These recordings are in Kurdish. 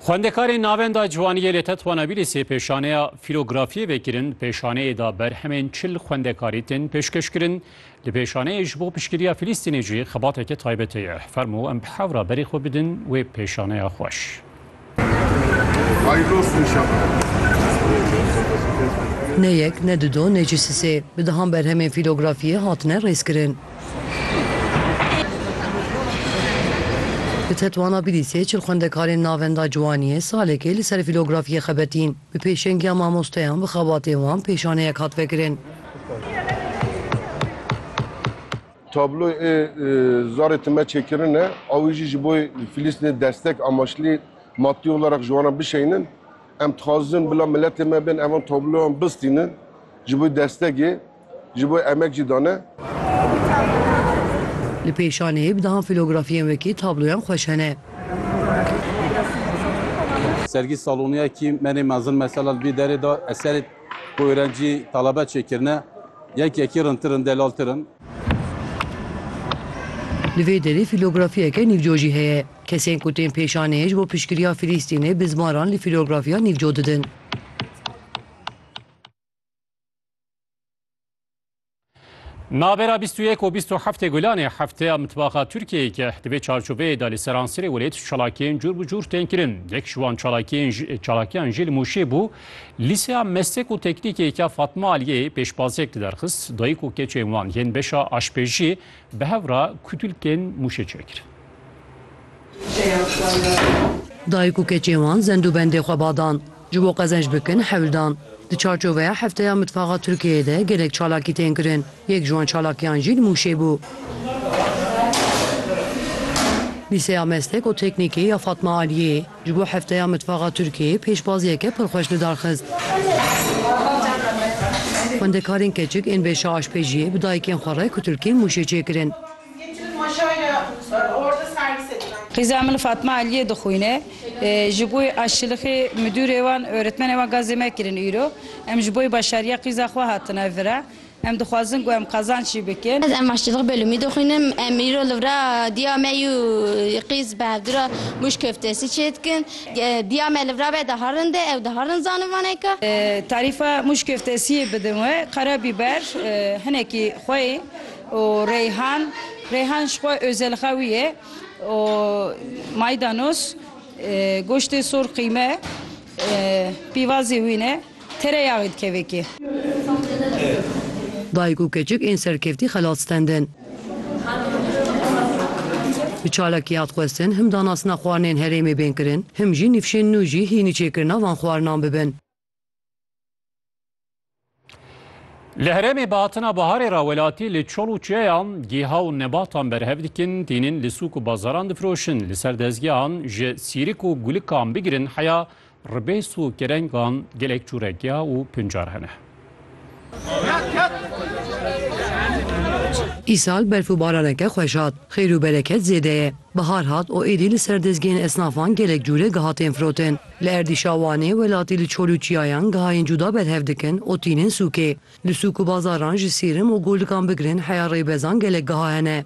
Xwendekarên Navenda Ciwaniyê li Tetwanabîlîsê pêşaneya fîlografiyê vekirin, pêşaneyê de berhemên çil xwendekarî tên pêşkeşkirin. Li pêşaneyê ji bo piştgiriya Filîstînê jî xebateke taybet heye. Fermo em bi hev re berê xwe bidin wê pêşaneya xweş. Ne yek, ne du do, ne jî sisê, bi dehan berhemên fîlografiyê hatine rêzkirin. Di Tetwana Bilîsê çil xwendekarên Navenda Ciwaniyê salekê li ser fîlografiyê xebitîn. Bi pêşengiya mamosteyan bi xebatên wan pêşaneyek hat vekirin. Tabloyê Zarê Time çêkirin e. Awî jî ji bo Filîstînê destek amaşlî maddî olarek ji wan re bişeynin. Em dixwazin bila miletê me bên evan tabloyan bistînin ji bo destegê. Ji bo emek jî dane. Li pêşanê bi dehan filografiyên wekî tabloyan xweş hene. Sergî saloniya kî menê mezin mesela li vî derê de eserê ku êrencî telebe çêkirine yek yekî rintir in delaltir in. Li vê derê filografiyeke nîvco jî heye. Kesên ku tên pêşanê ji bo piştgiriya Filîstînê bi zmaran li filografiya nîvco didin. Navbera bîst û yek û bîst û heftê Gulanê hefteya mitbaxa Tirkiyeyê ke di vê çarçoveyê de li seransirê welêt çalakiyên cûr bi cûr tên kirin. Yek ji wan çalakiyên ji- çalakiyan jî li Mûşê bû. Lîseya Meslek û Teknîkê ke Fatma Aliyê pêşbaziyek diderxist, dayik û keçên wan yên beşa aşpêjiyê bi hev re kutulkên Mûşê çêkirin. Dayik û keçê wan zendûbendê xwe ba dan. Ji bo qezenç bikin hewl dan. Di çarçoveya Hefteya Mitfaxa Tirkiyeyê de gelek çalakî tên kirin. Yek ji wan çalakiyan jî li Mûşê bû. Lîseya Meslek û Teknîkê ya Fatma Aliyê ji bo Hefteya Mitfaxa Tirkiyeyê pêşbaziyeke pir xweş li dar xist. Xwendekarên keçik ên beşa aşpêjiyê bi dayikên xwe re kutilkên Mûşê çêkirin. Qîza min Fatma Eliyê dixwîne. Ji bo aşilixê midûrê wan, oretmenê wan gazê me kirin îro. Em ji bo başariya qîza xwe hatine vir e. Em dixwazin ku em qazanc jî bikin. Ez aşilixê belûmî dixwînim. Em îro li vir a diya me yû qîz bi hevdura mûş koftesî çê dikin. Diya me li vir a be diherin de ew diherin zanivaneke. Tarîfa mûş koftesiyê bidin we qere bîber hinekî xwe yê. û Reyhan Reyhan ji xwe ozêlxewî ye û maydanos goştê sor qîme pîvazê wî ne tereyağî dikeve kê. Dayik û keçik ên serkevtî xelat stendin. Bi çalakî hat xwestin him danastina xwarinên herêmê bên kirin him jî nîfşên nû jî hînî çêkirina van xwarinan bibin. Li herêmê bi hatina biharê re welatî li çol û çiyeyan giha û nebatan berhev dikin, tînin li sûk û bazaran difiroşin. Li ser dezgehan ji sîrik û gulikan bigirin heya ribês û kerengan gelek cûre giha û pincar hene. Îsal berf û baraneke xweş hat, xêr û bereket zêde ye. Bihar hat û êdî li ser dezgehên esnafan gelek cûre giha tên firotin. Li erdîşa Wanê welatî li çol û çiyayan gihayên cuda berhev dikin û tînin sûkê. Li sûk û bazaran ji sîrim û golikan bigirin heya rêbezan gelek giha hene.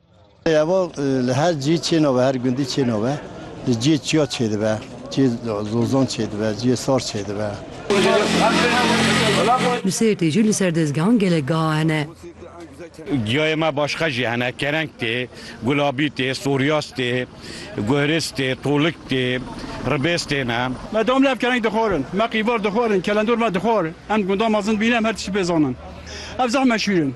Evo li her cî çêno be, her gundî çêno be. Li ciyê çiya çêdibe, ciyê zozan çêdibe, ciyê sar çêdibe. Li Sêrtê jî li ser dezgehan gelek geha hene. Giyayê me başka jî hene, kereng tê, gulabî tê, soryas tê, guhriz tê, tolik tê, ribêz tê ne. Me dom lê ev kereng dixwarin, me qîvar dixwarin, kelendor me dixwar. Em gundan mezin bîne em her tiştî pê zanin. Ev zeh meşhûr in.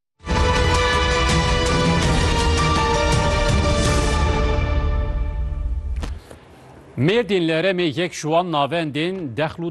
Mêrdîn li Herêmê yek ji wan navendên Dexlû